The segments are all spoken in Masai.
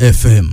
FM.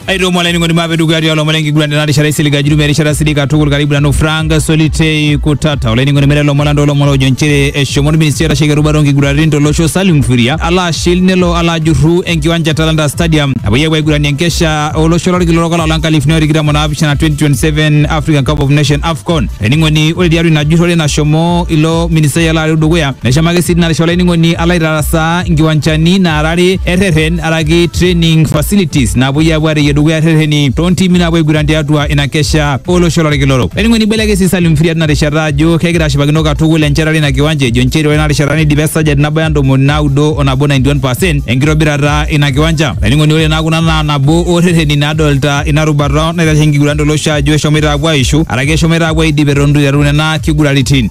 aitomo olainining'oni maape dukuya tialo lomon lenkiguran tena rishata isilig ajirume erishata sidai katukul karibu nanu frank solitei kutata olainining'oni mere lomon lando lomon ojo nchere eshomo orministri oitasheki erubata onkiguraritin tolosho salim furia alo ashil nelo alo ajurru enkiwanja e talanta stadium apoyie apuo aiguranie enkesha olosho lorkila orok olapa lonkalifuni otikitam onaapishana 2027 african cup of nation afcon olainining'oni ore tiatua ina jurrore nashomo ilo ministai alo areu dukuya neshomo ake sii tinarishata olainining'oni alo aitarasaa nkiwanjani naarare erreren araki training facilities napuoi apuo areyie dukuya rreteni toontimi naapuo aiguran tiatua ina kesha olosho lorkila orok. Eningo nibelekeny si Salim Mfiria tina rishata ajo kegira ashipakino katukul enchetare ina kiwanja ejo nchere ore ina rishata neidipa esajati nabaya ntomoni naudo o nabo 91% enkitobirata ina kiwanja. Olainining'oni ore naa kuna naa nabo oo rreteni nadolta ina rubata naitasheki enkiguran tolosho ajo eshomoita apuo aishu araki eshomoita apuo aidip eton itu iteru nena kiguraritin.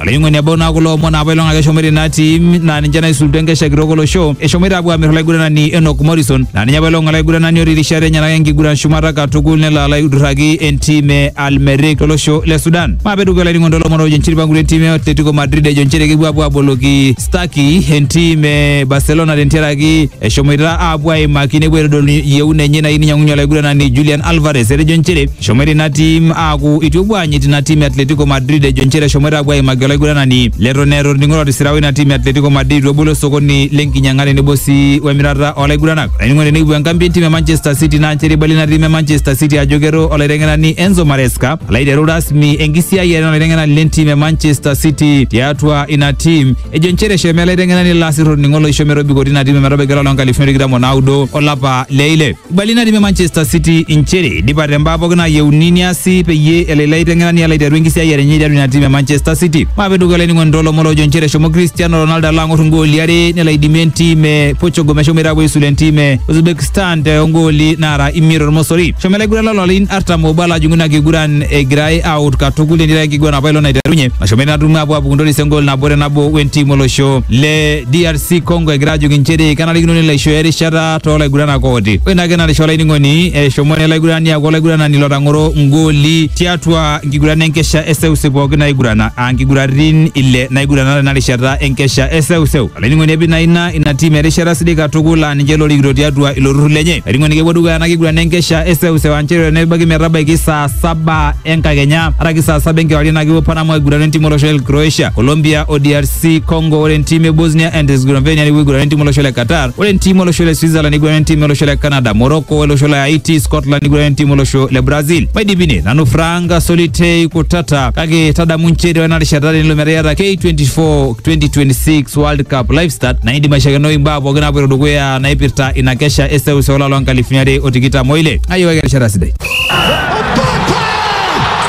Olaing'oni ebau naa kulo omon apa ilong ake eshomoita ina tim naa ninche naisulutua enkesha kitok olosho eshomoita apuo aamir olaiguranani Enock Morrison naa ninye apa ilong olaiguranani otii rishat enyenak enkiguran shumata katukul nelo alo aidurraki entim e Al Merrikh tolosho le Sudan. Maape dukuya olainining'oni toolomon oojo nchere eipangutua entim e Atletico Madrid ejo nchere kepuo apuo aboloki Stuckey entim e Barcelona tentiaraki eshomoita apuo aimaki nepuo aitodolu yieuna enye nayieu ninyang'unye olaiguranani Julian Alvarez etejo nchere Eshomoita ina tim aaku itu epuo aanyit ina tim e Atletico Madrid ejo nchere eshomoita apuo aimaki olaiguranani leton eeta orning'o lotisirawa ina tim e Atletico Madrid itu ebolo osokoni lenkinyang'a tenebo sii wemirata olaiguranak. Olainining'oni nekipuo enkambi entim e Manchester City naa nchere eibalie ina tim e Manchester City ajo kero olaiteng'enani Enzo Maresca alo aiteru rasmi enkisiayiare olaiteng'enani lentim e Manchester City tiatua ina tim ejo nchere eshomo ele aiteng'enani lasir orning'o loisho metobiko tina tim ometabaiki olapa loonkalifuni tikitam onaudo olapa le ile. Ibali natii Manchester City inchere idipate mbaa pooki naayieuni niasi peyie elo ilo aiteng'enani alo aiteru enkisiayiare enye tiatua ina tiim e Manchester City. Maape dukuya olainining'oni toolomon loojo inchere eshomo Cristiano Ronaldo alo ang'or ingooli are nelo aidimie entiim e Portugal meshomoita aapuo aisula entiim e Uzbekistan te ongooli naara imiet ormosori. Eshomo ilaiguran loo larin artam oobo alo ajing'u ina kiguran egirai aawut katukul netii ake enkiguran apailong naiterunye nashomo ina tumo aapuo aapuku ntoris engool nabo te nabo wentiim olosho le DRC. si Congo egira ajoki nchere kenarikino nelo aishooyo erishata too laiguranak ooti. Ore ina kenarisho olainining'oni eshomo ele aigurani aaku olaiguranani lotang'oro ngooli tiatua nkiguran enkesha e seuseu pooki naigurana aa nkiguratin ile naigurana tena rishata enkesha e seuseu. Olainining'oni epik naa ina ina tim erishata sidai katukul aa ninche lorikito tiatua ilo turrur lenye. Olainining'oni kepuo dukuya ena kiguran enkesha e seuseu aa nchere tenebaiki metabaiki saa saba enkakenya araki saa saba enkewarie naa kepuo Panama aigurana entim olosho le Croatia, Colombia o DRC si congo ore entiim e bosnia and herzegovina niguran entiim olosho le qatar ore entiim olosho le switzerland niguran entiim olosho le canada morocco olosho le haiti scotland niguran entiim olosho le brazil maidipine nanu frank solitei kutata kake tadamu nchere ore ena rishata tenilo metaa iyata k24 2026 world cup live start naidim aishakenoi imbaa pookin naapoito dukuya naipirta ina kesha e seuseu olapa loo nkalifuni are o tikitam oile ayiewaki erishata sidai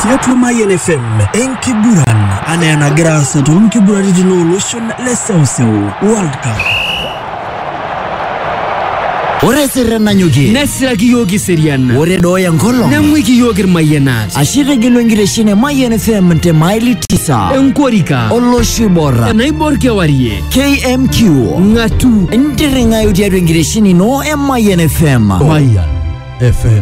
Tiatua Mayian FM kiguran anaa enagira aasa toonkiguraritin olosho le seuseu World Cup. Ore esirre nanyokie nesiraki iyiook iserian ore dooya enkolong neng'uiki iyiook irmayianat ashe itegelu enkitesheni e Mayian FM te maili tisa enkorika olosho oiborra enaibor kewarie KMQ ng'atu intirring'ayu tiatua enkitesheni ino e Mayian FM. Mayan FM.